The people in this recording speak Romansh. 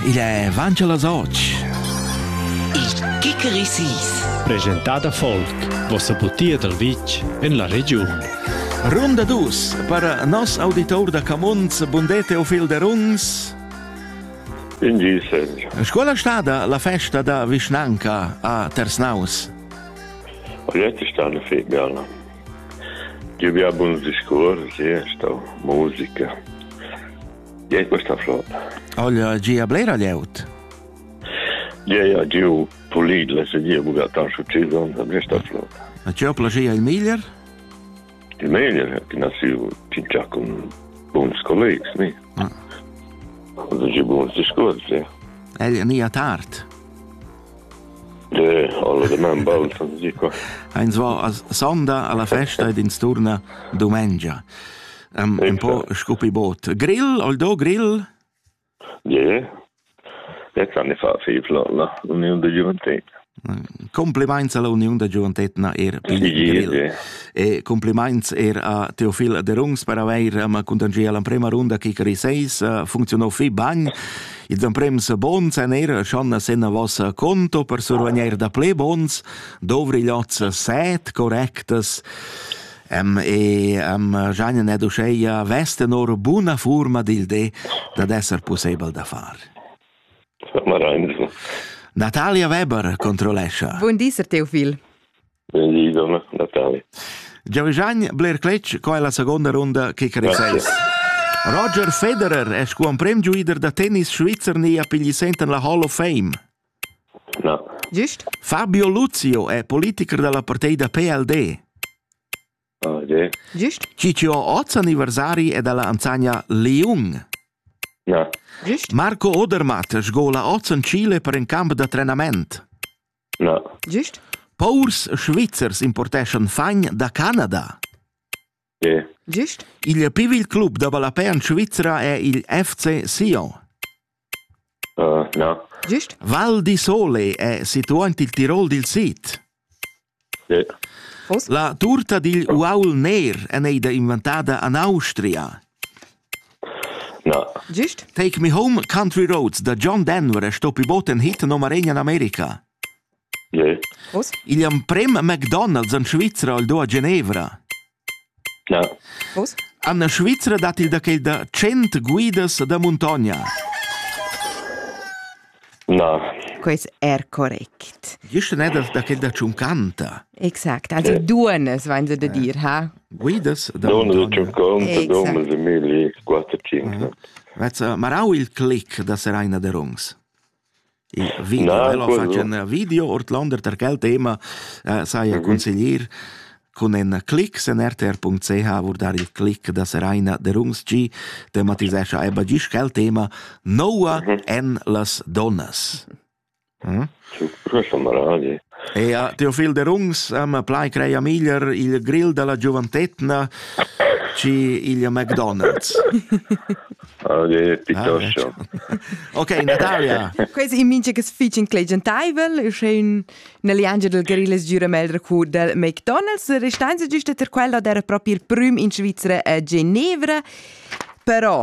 Il è Vancha las Och. Il Kikerisis. Presentada folk, vossa butia dal vitg en la regiun. Runda dus, per nos auditor da Camuns, bundè Teofil de Runs. In Scuola stada la festa da vischnanca a Tersnaus? Ogliette sta una febbiala. Io vi ha buon discorsi, sta musica. Gie, questa flot. Olha, gia blera lieut. Gie, ja, giu pulid, le se dir, buga tan succedon, questa flot. A ciò plagia il miglior? Il miglior, che nasciu tingia con buons collegs, mi. Ah. Und ich habe uns diskurz, ja. El nia tard. De, alle de man bald, som dico. Eins war a sonda alla festa ed in sturna domengia. um, un po' scopi bot. Grill, Aldo, grill? Yeah. Ja kann ich fa fevla l'union de gioventut. Compliments alla Union da Gioventut na er grill. E compliments er a Teofil Derungs per aver um, contangier l'emprema runda che Kikari 6 uh, funzionò fi bagn. Ils emprems bons en er schon senna vos conto per survegner da ple bons, dovri lots set correctes. Em e am giajan ed uscheia vesten or buna furma dil de dad esser pussebel da far. Marainzo. Natalia Weber controllescha. Buon di, Sir Teofil. Buon di, donna Natalia. Giavigian Blair Cletsch, qua è la seconda runda che creseis. Roger Federer è scuan prem giuider da tennis svizzer ni a pigli senten la Hall of Fame. Fabio Luzio è politicher da la partida da PLD. Gist. Ciccio oz anniversari è da la ansagna Liung. Marco Odermatt sgola oz en Chile per in camp da trenament. Gist. Paurs svizzers importeschan fagn da Canada. Gist? Il pivil club da ballapè en Svizra è il FC Sion. Uh, no. Gist? Val di Sole è situà en il Tirol dil sid. Yeah. La turta digl uaul ner è eida inventada an Austria. No. Gist? Take Me Home Country Roads da John Denver è stoppi bot en hit nummer 1 in America. Igl emprem a McDonald's en Svizra el do a Genevra. En la Svizra dat il da quel da tschient guidas da muntogna. Na. Quest è correct. Gist ne da quel da Ciuncanta. Exact, also duonas vein se da dir, ha? Guidas da Donas da Ciuncanta, donas e mili, quattro, cinque. Vez marau il clic da Seraina de Rungs? Il video, Na, el fatg ein video ordlander per quel tema, eh, sai mhm. consiglier cun in clic sen rtr.ch vurdar il clic da Seraina der Ungstgi tematisescha eba gis quel tema Noa mhm. en las donnas. Hm? Ci prossimo radio. Eau, Teofil Derungs, am plai creia miglier il grill da la giuventetna chi il McDonald's. Okay, piuttosto. Okay, Natalia. Quais in mincha cas fich inclegiantaivel, uschè ün üna liangia dal grill es gira meglra cu dal McDonald's. Restanza güsta ter quella d'eira propi il prüm in Svizra a Genevra. Però